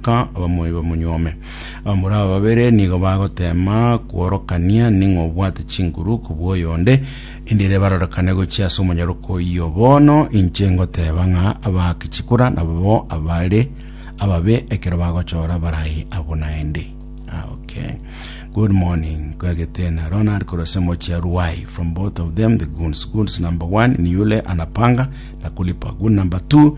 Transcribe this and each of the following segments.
Ka abamoyo bamonyuome. Abamura aba babere nigo bagoteema kworokania ning'o obwate chinguru kobua oyonde, endire barorekane gochia ase omonyaroka oyio. Bono inche ngoteeba ng'a abaake chikura nababo abare ababe ekero bagochora abarai abwo naende. Ah, okay. Good morning, kwegete na Ronald korwa ase emochi ya Ruai. From both of them the goons. Goons number one ni yule anapanga na kulipa. Goon number two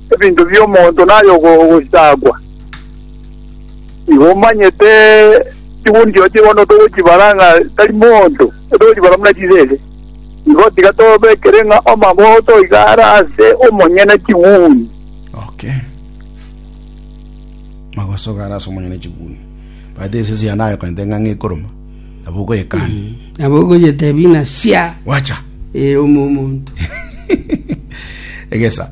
ebinto bi'omonto naye ogosaagwa, igo omanyete chiguni chiao chikondo togochibara ng'a tari monto, togochibara buna chisese. Igo tiga tobekere ng'a amabogoto iga are ase omonyene chiguni. Okay. Magoso iga are ase omonyene chiguni. But esese ya naye okonyete ng'a ng'ekoroma, nabo ogoyekana. nabo ogoyetebia ng'a sia Wacha. ere omomonto Egesa.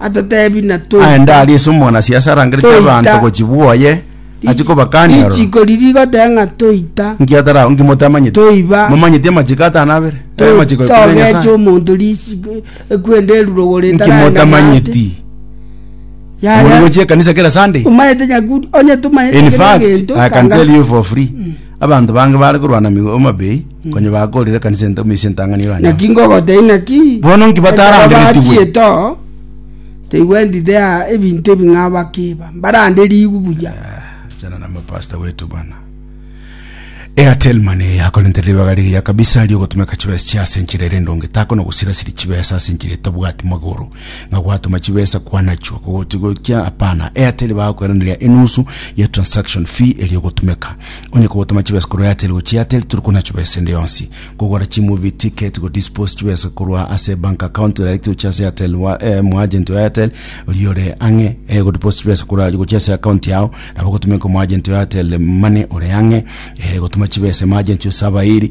atotebi na toita. Aende aria ase omwanasiasa arangerete Toita. abanto gochibwa oye, Rich- achi kobakania ororo. Richiko riri rigoteba ng'a toita. Nki atara nki motamanyeti? Toiba. Momanyeti amachiko atano abere? Eh, amachiko ekumi na Togecha Nyasaye. omonto risiko ekwenda erurogo Nki ritaraenda motamanyeti? ng'ate. Yaya. Muri gochia ekanisa kera Sunday? Umayete nyakuri onye tumayete In kera fact, egento I can kanga- tell you for free. Abanto bange baare korwana amegwe amabei, konya bakoorire ekanisa ento ime ase entang'ani y'Omonene. Naki ngogotebia inaki, Bono nki bataranderetigwe? Ekero bachete oo, taigwenti tea ebinto ebi ng'a bakiiba, mbaranderigwe buya. Achana na mapasta wetu bana. Airtel Money yakorentera ribaga rigiya kabisa riogotumeka chibesa chia ase enchera ere endonge. Takona gosirasiri chibesa ase enchera etabwati magoro. ng'a gwatoma chibesa kwanachwa kogoti gokia apana Airtel bagakweranera enusu ya transaction fee eria ogotumeka onye kogotoma chibesa korwa Airtel gochia Airtel turi konachwa besa ende yonsi kogora chimovie ticket go dispose chibesa korwa ase bank account direct gochia ase Airtel wa eh, mu agent wa Airtel oria ore ang'e eh, go deposit chibesa korwa gochia ase account yao nabo gotumeka mu agent wa Airtel mane ore ang'e eh, gotuma chibesa mu agent yo Sabairi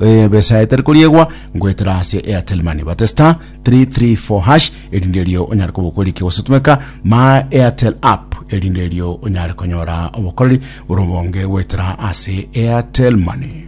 ebesa etari koriegwa goetera ase Airtel Money. Bate star 334 hash erinde erio onyare koba okoriki gosotumeka My Airtel app erinde erio onyare konyora obokoreri bore obonge goetera ase Airtel Money.